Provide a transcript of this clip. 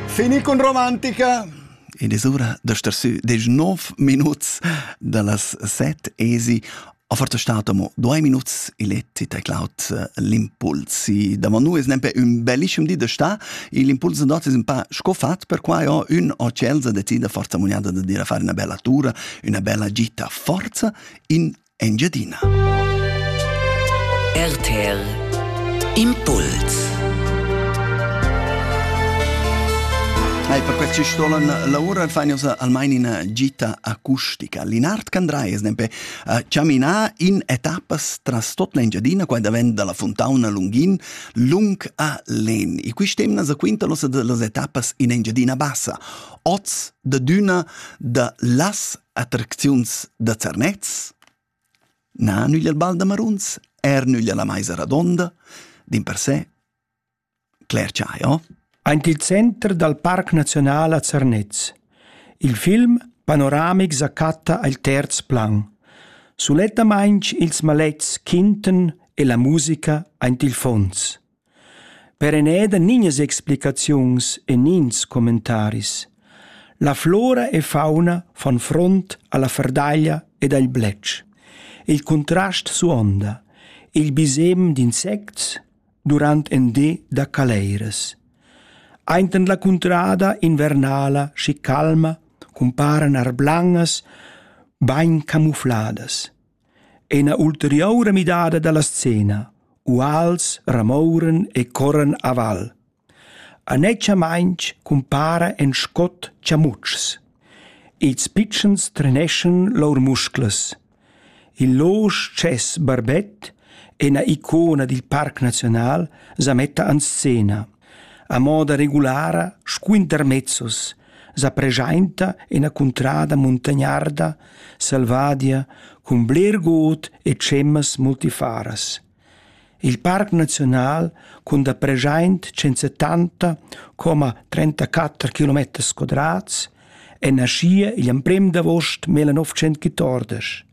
Fini con romantica. Ed es ura da star sü desch nov minuts da las set esi a forza stato mo due minuts i letti te Cloud eh, l'impulsi da manu es nempe un bellissimo di da sta l'impulso dot es un pa scofat per qua ho un o Chelsea decida forza muniata da dire fare una bella tura una bella gita forza in Engiadina. RTL Impuls Ei per quei stolen lavura fain osa almain ina gita acustica. Linard Candrai es nempe uh, chamina in etappas tras tot l'Engiadina, quai davent dalla fontauna Lungin, lung a Len. E quist'emna sa quinta l'osa de las etappas in Engiadina bassa. Oz da d'üna da las Attracziuns da Zernez? Na, nügl al bal da maruns, er nügl alla maisa radonda, din per se. Claire Chaio. Aint il center dal Parc Naziunal a Zernez. Il film panoramic sa chatta al terz plan. Sulettamainch ils malets quinten e la musica aint il fons. Per Eneda nignas explicaziuns e nigns commentaris. La flora e fauna fan front alla ferdaglia ed agl bletsch. Il contrast suonda. Il bisem d'insects durant en di da caleiras. Ainten la cuntrada invernala schi calma cumparan arblangas bain camufladas. Ei ina ulteriura midada dalla scena. Uals ramouran e corran aval. Anetschamaintg cumpara en scot chamutschs. Ils pitschens treneschan lur musclas. Il losch tschess barbet, ina icona dil parc naziunal, sa metta en scena. A moda regulara squinter mezzos, sa preschainta üna cuntrada muntagnarda selvadia cun bler god e tschemmas multifaras. Il parc naziunal cun da preschaint 170 34 km quadrats è naschia igl emprem d'avost 1914.